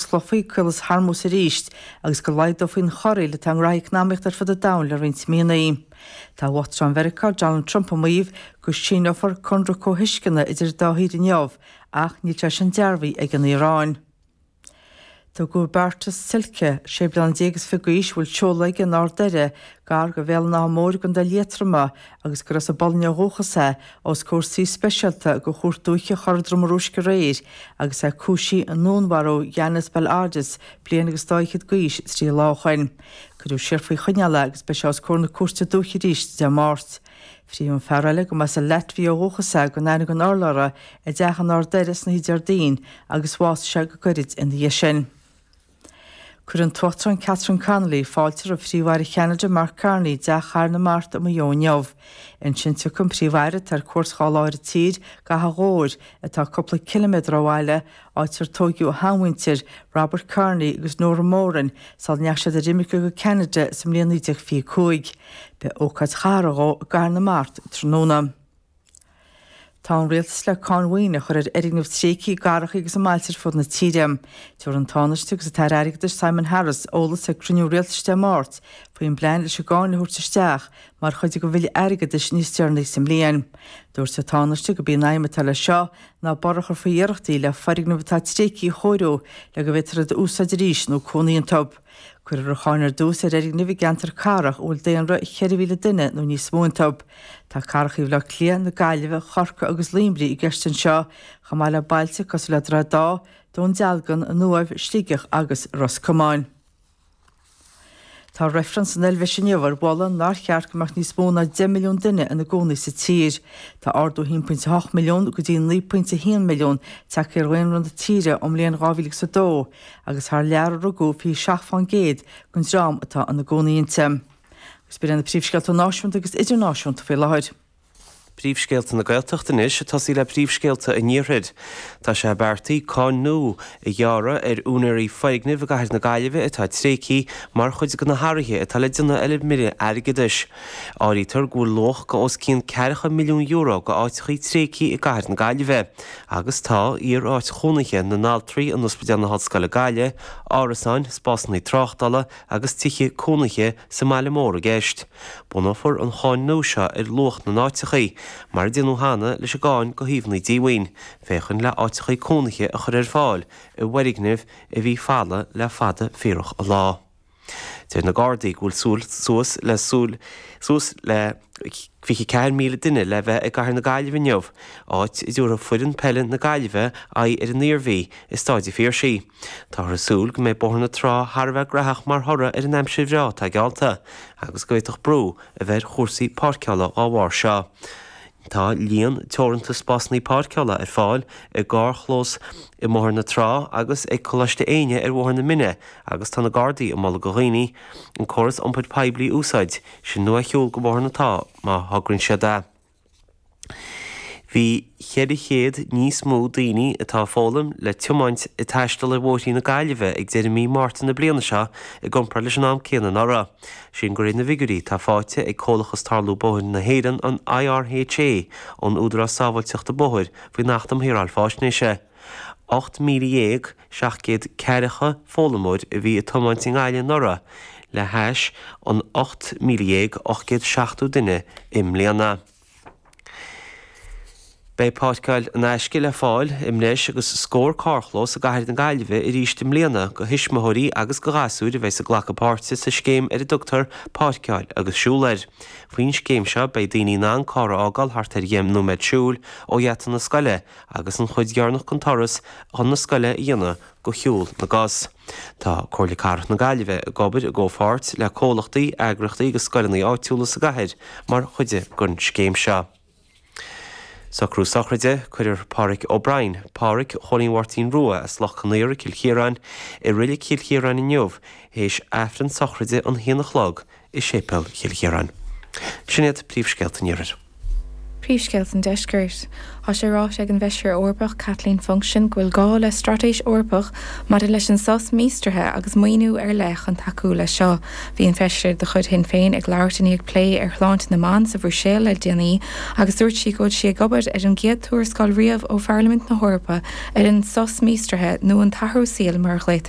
sclófaí Caolas Hormuz arís agus go laghdófaí an chorraíl atá i ngraithí eacnamaíochta ar fud an domhain le roinnt míonna. Tá Uachtarán Mheiriceá, Donald Trump ag maíomh go síneofar conradh comhthuisceana idir an dá thír inniu ach níl sé sin dearbhaithe ag an Iaráin. Tugadh Bartosz Zielke, sé bliana déag is fiche d'aois, a bhfuil seoladh aige in Ard Doire gar do Bhéal an Átha Móir i gContae Liatroma, agus gur as an bPolainn ó dhúchas é, os comhair suí speisialta de Chúirt Dúiche Chora Droma Rúisc aréir agus é cúisithe i ndúnmharú Janis Bel-Ardes bliain agus dá fhichead d'aois trí lá ó shoin. Cuireadh siar faoi choinneáil é agus beidh sé os comhair na cúirte dúiche arís Dé Máirt. Frítheadh an fear eile, a mba as an Laitvia ó dhúchas é, gan aithne gan urlabhra i dteach in Ard Doire san oíche Déardaoin agus bhásaigh sé go gairid ina dhiaidh sin. Cuirfidh an tUachtarán Catherine Connolly fáilte roimh Phríomh-Aire Cheanada Mark Carney i dTeach Chathair na Mart i Maigh Eo inniu. Ansin tiocfaidh an Príomh-Aire atá ar cuairt dhá lá ar an tír, go hAchadh Ghobhair, atá cúpla ciliméadar ó bhaile, áit ar tóigeadh a sheanmhuintir, Robert Carney agus Nora Moran, sula ndeach siad ar imirce go Ceanada sa mbliain 1925. Beidh ócáid chathartha dhó i gCathair na Mart tráthnóna. Tá an rialtas le cáin mhaoine a chur ar fhoirgnimh tréigthe, i gcathrachaí agus i mbailte ar fud na tíre. Tabharfaidh an Tánaiste agus an tAire Airgeadais, Simon Harris, eolas ag cruinniú rialtais Dé Máirt faoin bplean leis an gcáin a thabhairt isteach mar chuid den bhille airgeadais níos deireanaí sa mbliain. Dúirt an Tánaiste gurb í an aidhm atá leis seo ná borradh a chur faoi iarrachtaí le foirgnimh atá tréigthe a chóiriú le go bhféadfar iad a úsáid arís nó cónaí iontu. Cuirfear an cháin ar dtús ar fhoirgnimh i gceantair cathrach a bhfuil daonra 4,000 duine nó níos mó iontu. Tá cathracha Bhaile Átha Cliath, na Gaillimhe, Chorcaí agus Luimnigh i gceist anseo, chomh maith le bailte cosúil le Droichead Átha, Dún Dealgan, an Uaimh, Sligeach agus Ros Comáin. Tá reifreann san Eilbheis inniu ar mholadh nár cheart go mbeadh níos mó ná 10 milliún duine ina gcónaí sa tír. Tá ardú 1.8 milliún, go dtí 9.1 milliún, tagtha ar dhaonra na tíre ón mbliain 2002, agus thar lear a rugadh, 27% den dream atá ina gcónaí inti. Agus b'in na príomhscéalta náisiúnta agus idirnáisiúnta faoi láthair. Príomhscéalta na Gaeltachta anois ag tosaí le príomhscéalta an Iarthair. Tá sé beartaithe cáin nua a ghearradh ar úinéirí foirgnimh i gcathair na Gaillimhe atá tréigthe mar chuid de na hathruithe atá le déanamh ar an mBille Airgeadais. Áirítear go bhfuil luach de os cionn ceathracha milliún euro de áiteachaí tréigthe i gcathair na Gaillimhe. Agus tá, iaráit chónaithe na n-altraí in Ospidéal na hOllscoile Gaillimh, árasáin, spásanna tráchtála agus tithe cónaithe sa mbaile mór i gceist. Bunófar an cháin nua seo ar luach na n-áiteachaí, mar a déanadh cheana leis an gcáin do shuíomhannaí díomhaoin, féachaint le áiteachaí cónaithe a chur ar fáil i bhfoirgnimh a bhí folamh le fada fíorach an lá. Deir na Gardaí go bhfuil suas le suas le 24,000 duine le bheith i gcathair na Gaillimhe inniu, áit a dtabharfaidh foireann peile na Gaillimhe aghaidh ar an Iarmhí i Stáid a' Phiarsaigh. Táthar ag súil go mbeidh Bóthar na Trá thar a bheith gnaitheach mar thoradh ar an aimsir bhreá atá geallta agus go bhféadfadh brú a bheith ar chúrsaí páirceála dá bharr seo. Tá líon teoranta spásanna páirceála ar fáil i gcarrchlós i mBóthar na Trá agus ag Coláiste Éinne ar Bhóthar na Míne Agus tá na Gardaí ag moladh go dhaoine an córas iompair poiblí a úsáid, sin nó a shiúl go Bóthar na Trá má thograíonn siad é. Bhí 400 níos mó daoine atá ag foghlaim le tiomáint ag taisteal ar bhóithre na Gaillimhe ag deireadh mí Márta na bliana seo i gcompráid leis an am céanna anuraidh, sin de réir na bhfigiúirí atá faighte ag Comhlachas Tarlú Bóithre na hÉireann, an IRHA, ón Údarás Sábháilteachta Bóthair faoin Acht um Shaoráil Faisnéise. 18700 ceathracha foghlaimeoir a bhí ag tiomáint i nGaillimh anuraidh le hais an 18870 duine i mbliana. Beidh páirceáil in aisce le fáil i mbreis agus scór carrchlós i gcathair na Gaillimhe arís i mbliana do thuismitheoirí agus do ghasúir a bheas ag glacadh páirte sa scéim ar a dtugtar 'Páirceáil agus Siúil' Faoin scéim seo beidh daoine in ann carr a fhágáil thart ar dheich nóiméad siúil ó gheata na scoile agus an chuid dheireanach den turas chun na scoile a dhéanamh go shiúl na gcos. Tá Comhairle Cathrach na Gaillimhe ag obair i gcomhpháirt le comhlachtaí, eagraíochtaí agus scoileanna áitiúla sa gcathair mar chuid den scéim seo. Socrú Sochraide, Cuirfear Páraic O'Brien, Páraic Chóilín Mháirtín Rua, as Loch Conaortha i gCill Chiaráin, i Reilig Chill Chiaráin inniu théis Aifreann sochraide an haon a chlog i séipéal Chill Chiaráin. Sin iad príomhscéalta an Iarthair. Príomhscéalta an Deiscirt. Tá sé ráite ag an bhFeisire Eorpach Kathleen Funchion go bhfuil gá le straitéis Eorpach maidir leis an sos míostraithe agus maoiniú ar leith chun tacú leis seo. Bhí an feisire de chuid Shinn Féin ag labhairt i ndiaidh plé ar shláinte na mban sa Bhruiséil le déanaí agus dúirt sí go bhfuil sí ag obair ar an gcéad tuarascáil riamh ó Pharlaimint na hEorpa ar an sos míostraithe nó an t-athrú saoil mar a ghlaotar